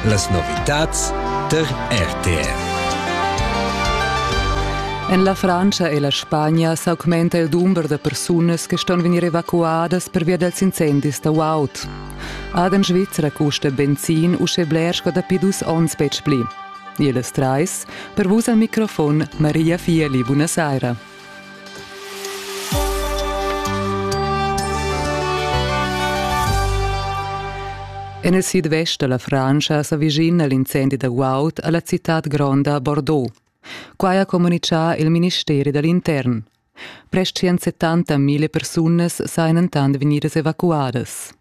Las novitads tar RTR. En la Frantscha e la Spagna s'augmenta il dumber da persunas che ston vegnir evacuadas pervia dals incendis da guaud. Ad en Svizzera custa benzin uschè bler sco dapi dus onns betg pli. Ihr las treis, per vus al microfon Maria Fieli, buonasera. En il sidvest da la Frantscha s'avicina l'incendi da guaud a la citad gronda Bordeaux. Quai ha communitgà il ministeri da l'intern. Prest 170 mila persunas sajan entant vegnidas evacuadas.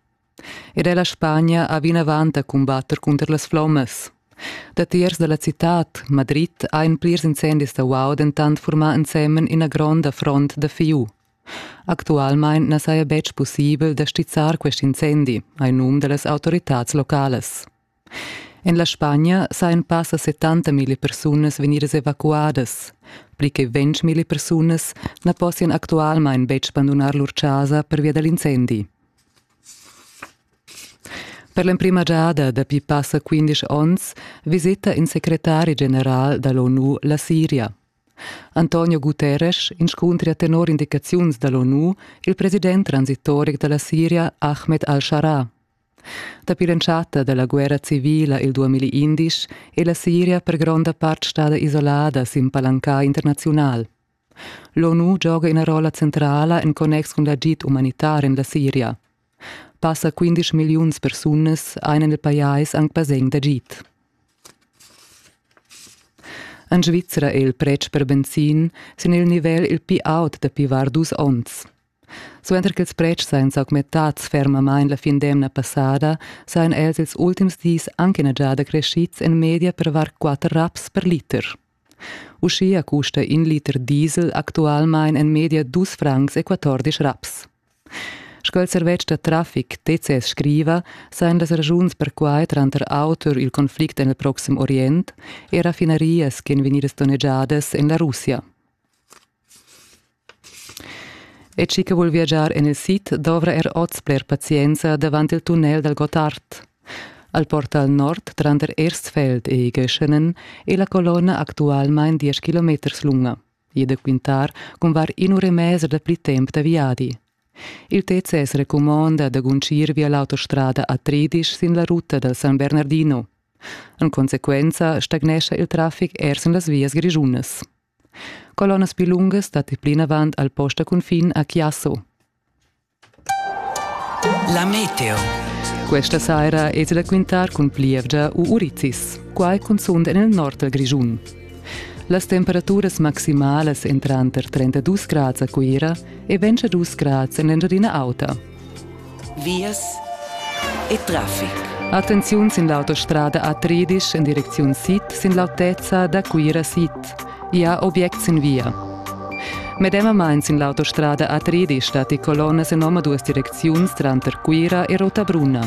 Era ella Spagna ha vinavant da cumbatter cunter las flommas. Datiers da la citad, Madrid, ein plirs incendis da uau dentant furmà ensemen ina gronda front da fiu. Actualmein na saja betg pussibel da stizzar quest incendi, hai num da las autoritads localas. En la Spagna sajan passa 70 mila persunas vegnidas evacuadas. Pli che 20 mila persunas na possian actualmain betg bandunar lur chasa pervia da l'incendi. Per l'emprima giada dapi passa 15 onns visita in secretari general da l'ONU la Siria. Antonio Guterres inscuntria tenor indicaziuns da l'ONU il president transitoric da la Siria Ahmed al-Shara. Dapi l'entschatta dalla guerra civila il 2011 è la Siria per gronda part stada isolada sin palanca internaziunal. L'ONU gioga ina rolla centrala en connex cun l'agid umanitar en la Siria. Passa 15 milliuns persunas ein en il pajais anc basegn d'agid. En Svizra è il pretsch per benzin sin il nivel il più aut dapi var dus onns. Suenter ch'ils pretschs ein s'augmentads fermamain la fin d'emna passada, sajan els ils ultims dis anc ina giada creschids en media per var quatter raps per liter. Uschia custa in liter diesel actualmain en media dus francs e quattordisch raps. Sco il servetsch da traffic TCS scriva, sajan las raschuns perquai tranter auter il conflict en il proxim Orient e raffinarias ch'en vegnidas donnegiadas en la Russia. E chi che voul viagiar en il sid dovra er oz bler pazienza davant il tunnel dal Gottard. Al portal nord tranter Erstfeld e Göschenen è la colonna actualmain 10 km lunga. E da quintar cun var in'ura e mezza da pli temp da viadi. Il TCS recumonda da guncir via l'autostrada a Tridisch sin la ruta dal San Bernardino. En consequenza stagnescha il traffic er sin las vias grischunas. Colonnas pli lungas datti plinavant al post da cunfin a Chiasso. La meteo. Questa saira es da quintar cun plievgia u urizis, quai cunzunt en il nord dal Grischun. Las temperaturas maximalas entran tranter 32 grads a Cuira e 22 grads en l'Engiadina Auta. vias e traffic. Attenziun sin l'autostrada A13 in direcziun sid sin l'autezza da Cuira sid. Ja objects in via. Medemamain sin l'autostrada A13 datti colonnas en omaduas direcziuns tranter Cuira e Rotabrunna.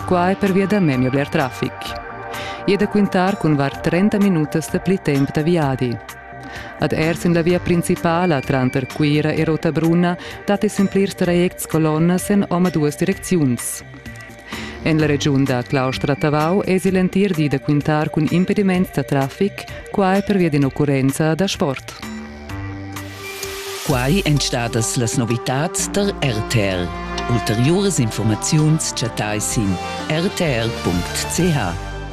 Quai pervia da memia bler traffic. E da quintar cun var 30 minutas da pli temp da viadi. Ad er sin la via principala tranter Cuira e Rotabrunna dat es en plirs trajects colonnas en omaduas direcziuns. En la regiun da Claustra-Tavau es il entir di da quintar cun impediment da traffic, quai pervia d'in'occurrenza da sport. Quai èn stadas las novitads tar RTL. Ulteriuras informaziuns chattai sin rtl.ch.